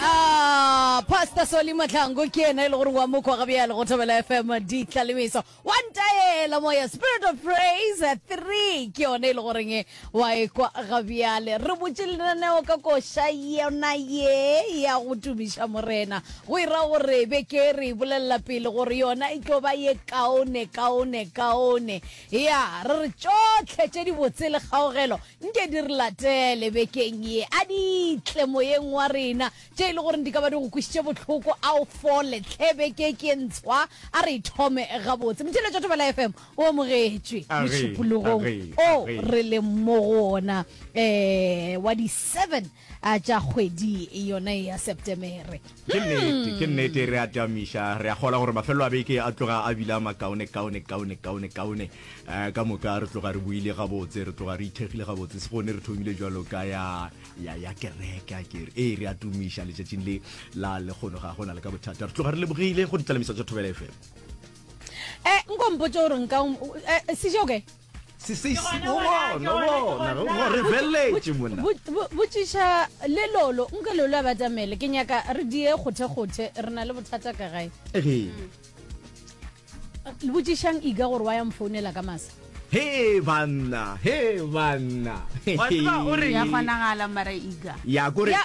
Ah, Pastor Soli Mahlangu ke yena e le gore wa mokwa ga bjale go Thobela FM ditlalemiso wa ntaela moya Spirit of Praise 3 ke yone e le goreng e wa e kwa ga bjale re botše lenaneo ka koša yona ye ya go tumiša morena go ira gore be ke re bolelela pele gore yona e tlo ba ye kaone kaone kaone ya re re tšotlhe tše dibotse le kgaogelo Nke di re latele bekeng ye, a di tle moyeng wa rena, tše e le goreng di ka ba di go kwešiše bohloko, a o fole tlhe beke ke ntshwa, a re e thome gabotse. Motheeletša wa Thobela FM o amogetšwe A re, mošupologong a re, a o re. re leng mo go ona um wa di 7 A tša kgwedi yona e ya Septemere. Ke nnete, ke nnete, re a tamiša, re a kgolwa gore mafelelo a beke a tloga a bile a makaone, kaone, kaone, kaone, kaone. Eh, ka moka re tloga re buile gabotse, re tloga re ithekgile gabotse, se gone re thomile jalo ka ya, ya, ya kereke, a kere, ee, re a tumiša letšatšing le la lekgono, ga gona le ka bothata, re tloga re lebogile go ditlalemiso tša Thobela FM. Eh, nko mpotše gore nka, um, eh, Sejoko e? botšiša le lolo nke lolo a batamele ke nyaka re die kgothekgothe re na le bothata ka gae botšišang iga gore wa ya mfounela ka masa he banna he banna ya kgonagala mara iga ya kore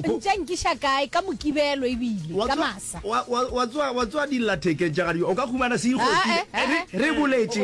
ntša nkiša kae ka mokibelo ebile ka masa wa tswa dillathekeng tša gadi o ka humana se ikgotile re boletše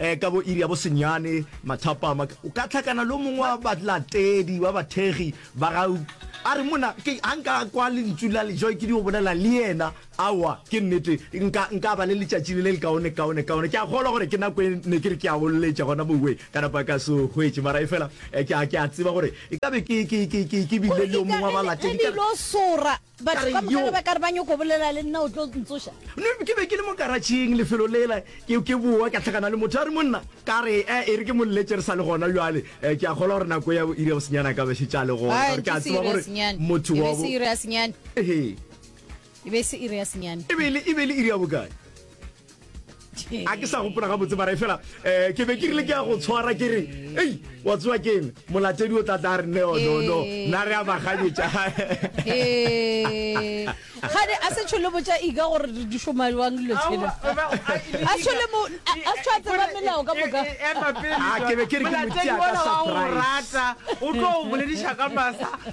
Eh, ka bo iri ya bosenyane mathapama o ka tlhakana le mongwe wa balatedi wa bathegi ba ga a re mona ke a nka kwa lentsu la lejo ke di go bolela le yena awa ke nnete nka nka ba le letšatši le le le kaone kaone kaone ke a kgolwa gore ke nako e ne ke re ke a go lletša gona moweng ka napa ka se hwetše mara e fela eh, ke a ke a tseba gore e ka be ke ke ke ke ke bile le yo mongwe wa balatedi ka sora Batho Ka re, ka moka "Yo." ge ba ka re ba nyoko bolela le nna o tlo ntsoša. Ne ke be ke le mo karatšheng lefelo lela ke, ke boa ka tlhakana le motho a re monna ka re e, e re ke mo lletše re sa le gona bjale e, ke a kgolwa gore nako ya bo iri ya bosenyana ka be šetše a le gona Aa, ka gore ke ke a se tseba iri ya gore senyane. motho E wa be bo se iri ya senyane. Ehe. E be se iri ya senyane. e be e le e be e le iri ya bokae a ke sa gopola ga botse mara e fela um ke be ke rile ke ya go tshwara ke re ei wa tsewa ke eng molatedi o tla tla re neo no no na re a baganyetša gane a se tshole botša ika gore di šoma jwang dilo tshele a tshole mo a tshwa tseba melao ka moka ke be ke re ke motia ka surprise o tlo o bolediša ka masa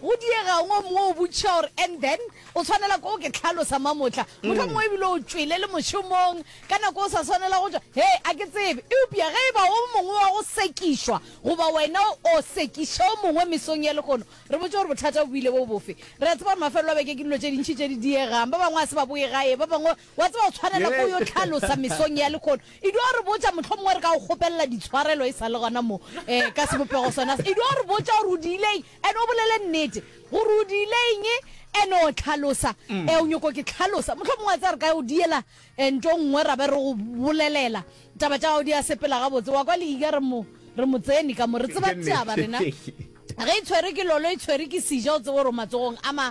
Go diega eng o mongwe o botšiša gore, And then? O swanela ke go ke hlalosa, Mamotla. Mohlomongwe e bile o tšwele le mošomong ka nako o sa swanela go tšwa. He, a ke tsebe. Eupša ge e ba o mongwe wa go sekišwa, goba wena o sekiša o mongwe mesong ya lehono, re botše gore bothata bo bile bo bofe. Re a tseba gore mafelo a beke ke dilo tše dintši tše di diegang. Ba bangwe ga se ba boe gae, ba bangwe, wa tseba, o swanela ke go yo hlalosa mesong ya lehono. Edu a re botša, mohlomongwe re ka go kgopelela ditshwarelo e sa le gona mo, ka sebopego sona se. Edu a re botša gore o di ile eng? And o bolele nnete gore o diile eng and o tlhalosa mm. eh, o nyoko ke tlhalosa motlho mongwe a tsa re ka o diela eh, nto nngwe ra be re go bolelela taba tša gago di a sepela gabotse wa kwa leiga re mo re mo tsene ka mo re tseba taba rena ge e tshwere ke lolo e tshwere ke seja o tsebo gore o matsogong a ma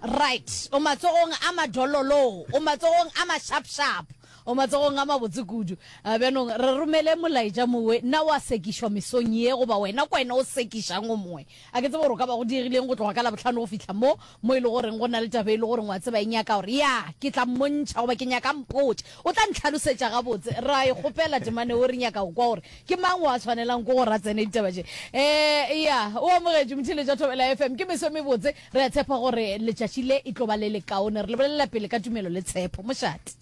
right o matsogong a madololo o matsogong a ma sharp sharp O matsogong a mabotse kudu. A bjanong re romele molaetša mowe, na o a sekišwa mesong ye, goba wena ke wena o sekišang o mongwe? A ke tsebe gore go ka ba go diegileng go tloga ka Labohlano go fihla mo, mo e lego gore go na le taba e lego gore o a tseba e nyaka gore, ya, ke tla mmontšha, goba ke nyaka a mpotše. O tla ntlhalosetša gabotse. Re a e kgopela temana yeo, re nyaka go kwa gore ke mang yo a swanelago ke gore a tsene ditaba tše. Ee, ya, o amogetšwe, motheeletši wa Thobela FM. Ke meso e mebotse. Re a tshepa gore letšatši le e tlo ba le lekaone. Re le bolelela pele ka tumelo le tshepo. Mošate.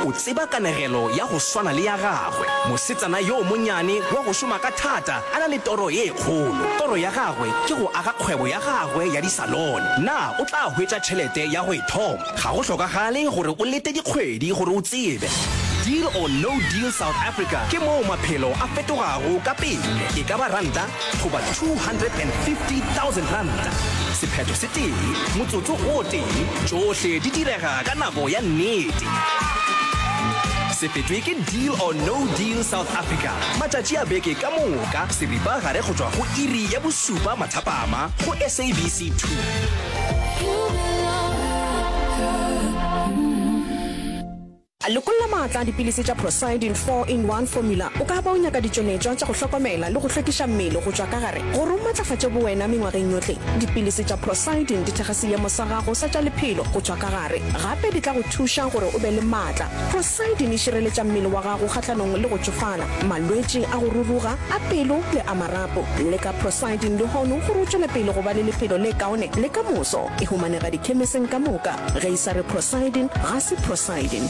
O tseba kanegelo ya go swana le ya gagwe, mosetsana yo monyane wa go šoma ka thata a na le toro ye kgolo. Toro ya gagwe ke go aga kgwebo ya gagwe ya disalone. Na o tla hwetša tšhelete ya go e thoma? Ga go hlokagale gore o lete dikgwedi gore o tsebe. Deal or No Deal South Africa ke moo maphelo a fetogago ka pele. E ka ba ranta goba R250,000. Sephetho se tee, motsotso o tee, tšohle di direga ka nako ya nnete. Se fetšwe ke Deal or No Deal South Africa, matšatši a beke ka moka, seripagare go tšwa go iri ya bošupa mathapama go SABC 2. Lekolla maatla a dipilisi tša Procyidin Four in One Formula. O ka ba o nyaka ditšonetšwa tša go hlokomela le go hlwekiša mmele go tšwa ka gare gore o matlafatše bowena mengwageng yohle. Dipilisi tša Procyidin di thekga seemo sa gago sa tša lephelo go tšwa ka gare. Gape di tla go thuša gore o be le maatla. Procyidin e šireletša mmele wa gago kgahlanong le go tšofala, malwetši a go ruruga, a pelo le a marapo. Leka Procyidin lehono gore o tšwele pele go ba le lephelo le kaone le ka moso. E humanega dikhemeseng ka moka. Ge Sa re prosiding ga se prosiding.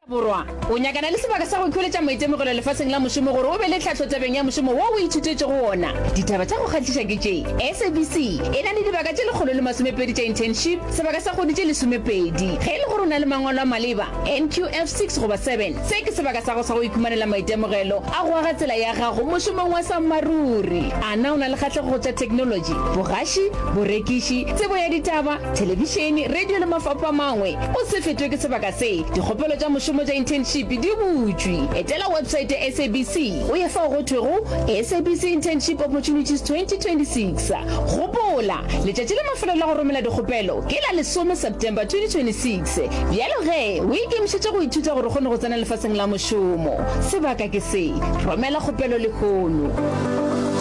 Borwa o nyakana le sebaka sa go ikhweletša maitemogelo lefaseng la mošomo gore o be le tlhahlo tabeng ya mošomo wo o ithutetšego wona. Ditaba tša go kgahliša ke tše, SABC e na le dibaka tše lekgolo le masomepedi tša internship, sebaka sa kgwedi tše lesomepedi. Ge e le gore o na le mangwalo a maleba, NQF 6 goba 7. Se ke sebaka sa go sa go ikhumanela maitemogelo a go aga tsela ya gago mošomong wa sammaruri. A na o na le kgatlego go tša theknolotši, bogaši, borekiši, tsebo ya ditaba, thelebišene, radio le mafapho a mangwe? O se fetwe ke sebaka se. Dikgopelo tša mošomo tša internship di butšwe. Etela website ya SABC o ye fao go thwego SABC Internship Opportunities 2026. Gopola, letšatši la mafelelo la go romela dikgopelo ke la lesome September 2026. Se, bjalo ge o ikemišetše go ithuta gore o kgone go tsena lefaseng la mošomo, sebaka ke se. Romela kgopelo lehono.